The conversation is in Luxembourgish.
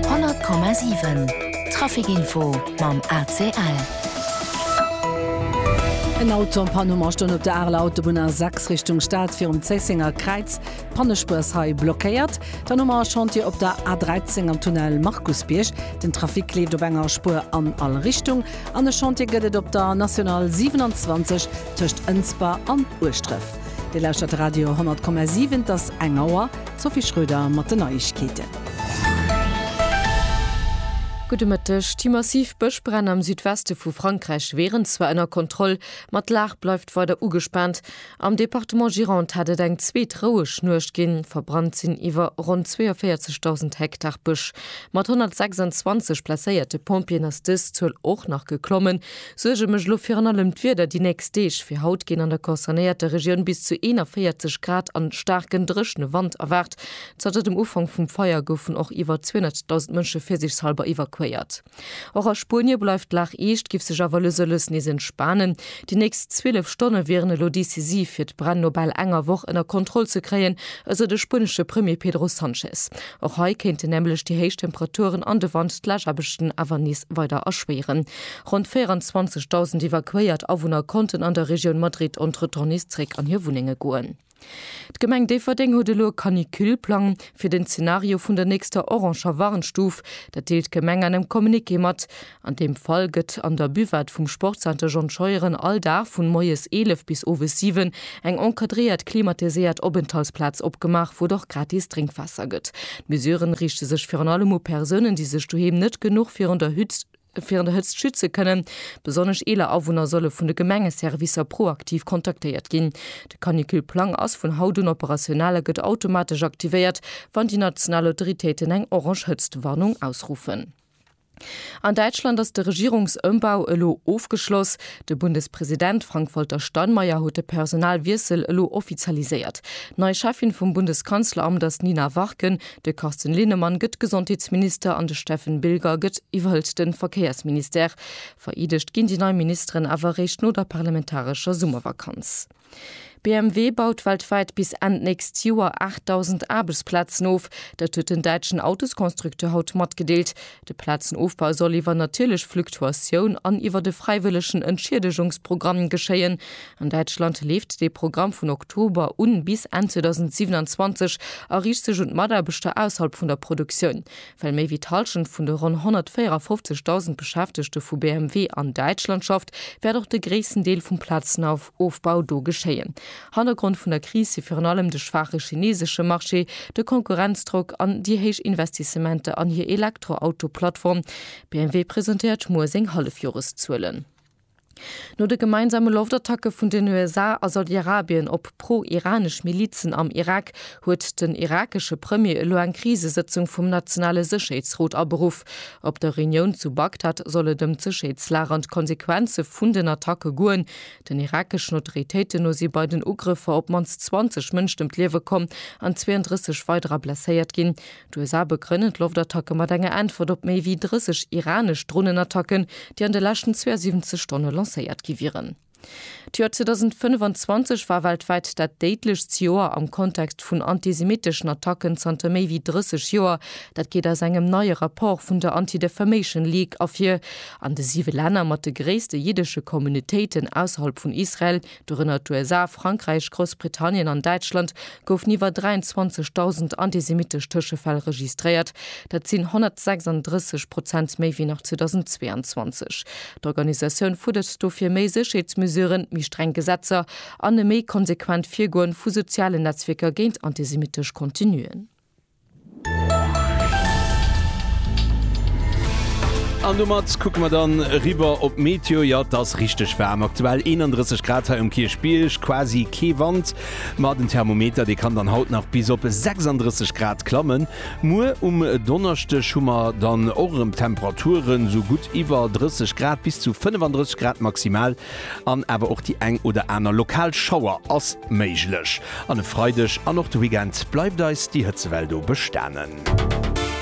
100,7 Trafic Info mam ACL. En Auto am Panne um a stoung op der Areler Autobunn A 6 Richtung Stad virum Zéissenger Kräiz. D'Pannespuer ass hei blockéiert. Dann hu mer e Chantier op der A 13 am Tunnel Markusbierg. Den Trafic leeft op enger Spuer an all Richtung. An e Chantier gëtt et op der National 27 tëscht Ënsber an Ueschdref. Dir lauschtert Radio 10,7, et ass eng Auer. D'Sophie Schröder mat den Neiegkeeten. Gudde Mëtteg. Déi massiv Bëschbränn am Südweste vu Frankräich wieren zwar ënner Kontroll, ma d'Lag bleift weider ugespaant. Am Departement Gironde hat et eng zweet roueg Nuecht ginn. Verbrannt sinn iwwer ronn 42.000 Hektar Bësch. Mat 126 blesséierte Pompjeeën ass dës Zuel och nach geklommen. Suerge mech elo virun allem d'Wieder déi nächst Deeg. Fir haut ginn an der concernéierter Regioun bis zu 41 Grad an staarken dréchne Wand erwaart. Zanter dem Ufank vum Feier goufen och iwwer 200.000 Mënsche virsichshalber evakuéiert. Och a Spuenie bleift d'Lag eescht, géif sech awer lues a lues nees entspanen. Déi nächst 12 Stonne wieren elo decisiv, fir d'Bränn no bal enger Woch ënner Kontroll ze kréien, esou de spuenesche Premier Pedro Sanchez. Och hei kéinten nämlech déi héich Temperaturen an de Wand d'Lageaarbechten awer nees weider erschwéieren. Ronn 24.000 evakuéiert Awunner konnten an der Regioun Madrid entretemps nees zréck an hir Wunnenge goen. D'Gemeng Déifferdeng huet elo e Canicule-Plang fir den Zenario vun der nächster oranger Warnstuf. Dat deelt d'Gemeng an engem Communiqué mat. An deem Fall gëtt an der Buvette vum Sportzenter John Scheuren all Dag vun moies 11 bis owes 7 eng encadréiert klimatiséiert Openthaltsplaz opgemaach, wou et och gratis Drénkwaasser gëtt. D'Mesuren riichte sech virun allem u Persounen, déi sech doheem net genuch virun der Hützt, Virun der Hëtzt schütze kënnen. Besonnesch eeler Awunner solle vun de Gemengeservicer proaktiv kontaktéiert ginn. De Canicule-Plang ass vun haut un operational a gëtt automatesch aktivéiert, wann déi national Autoritéiten eng orange Hëtztwarnung ausruffen. An Däitschland ass de Regierungsëmbau elo ofgeschloss. De Bundespresident Frank-Walter Steinmeier huet de Personalwiessel elo offizialiséiert. Nei Cheffin vum Bundeskanzleramt ass d'Nina Warken, De Carsten Linnemann gëtt Gesondheetsminister an de Steffen Bilger gëtt iwwerhëlt de Verkéiersministère. Vereedegt ginn déi nei Ministeren awer eréischt no der parlamentarescher Summervakanz. BMW baut weltwäit bis Enn d'nächst Joer 8.000 Aarbechtsplazen of. Dat huet den däitschen Autosconstructeur haut matgedeelt. De Plazenofbau soll iwwer natierlech Fluktuatioun an iwwert e fräiwëllegen Entschiedegungsprogramm geschéien. An Däitschland leeft dee Programm vun Oktober un bis Enn 2027 a riicht sech un d'Mataarbechter ausserhalb vun der Produktioun. Well méi wéi d'Hallschent vun de ronn 154.000 Beschäftegte vu BMW an Däitschland schafft, wäert och de gréissten Deel vum Plazenauf. Ofbau do geschéien. Hannergrond vun der Kris si virun allem de schwaache chineesesche Marché, de Konkurrenzdrock an déi héich Investissementer an hir Elektroauto-Plattform. BMW presentéiert muer seng Hallefjoreszuelen. No de gemeinsame Loftattacke vun den USA a Saudi-Arabien op pro-iranesch Milizen am Irak huet den irakesche Premier elo eng Krisesëtzung vum nationale Sécherheetsrot aberuff. Op der Reunioun zu Bagdad soll et ëm d'Sécherheetslag an d'Konsequenze vun den Attacke goen. Den irakeschen Autoritéiten no si bei den Ugrëffer op d'mannst 20 Mënschen ëm d'Liewe komm an 32 weiderer blesséiert ginn. D'USA begrënnen d'Loftattacke mat enger Äntwert op méi wéi 30 iranesch Dronenattacken, déi an de leschten 72 Stonne lancéiert gi wieren. D'Joer 2025 war weltwäit dat déidlechst Joer am Kontext vun antisemitteschen Attacken zanter méi wéi 30 Joer. Dat geet aus engem neie Rapport vun der Anti-Defamation League ervir. An de siwe Länner mat de gréisste jiddesche Communautéiten ausserhalb vun Israel, dorënner d'USA, Frankräich, Groussbritannien an Däitschland, goufen iwwer 23.000 antisemittesch Tëschefäll registréiert. Dat sinn 136 Prozent méi wéi nach 2022. D'Organisatioun fuerdert dofir méi Sécherheetsmesuren, méi streng Gesetzer an e méi konsequent Virgoen vu sozialen Netzwierker géint antisemittesch Contenuen. An domat kucke mer dann eriwwer op d'Meteo. Jo, et ass richteg waarm, aktuell 31 Grad hei um Kierchbierg, quasi kee Wand. Ma den Thermometer, dee kann dann haut nach bis op 36 Grad klammen. Muer um Donneschdeg hu mer dann och erëm Temperaturen esou gutt iwwer 30 Grad, bis zu 35 Grad maximal. An awer och déi eng oder aner lokal Schauer ass méiglech. An e Freideg an och de Weekend bleift eis déi Hëtzewell do bestanen.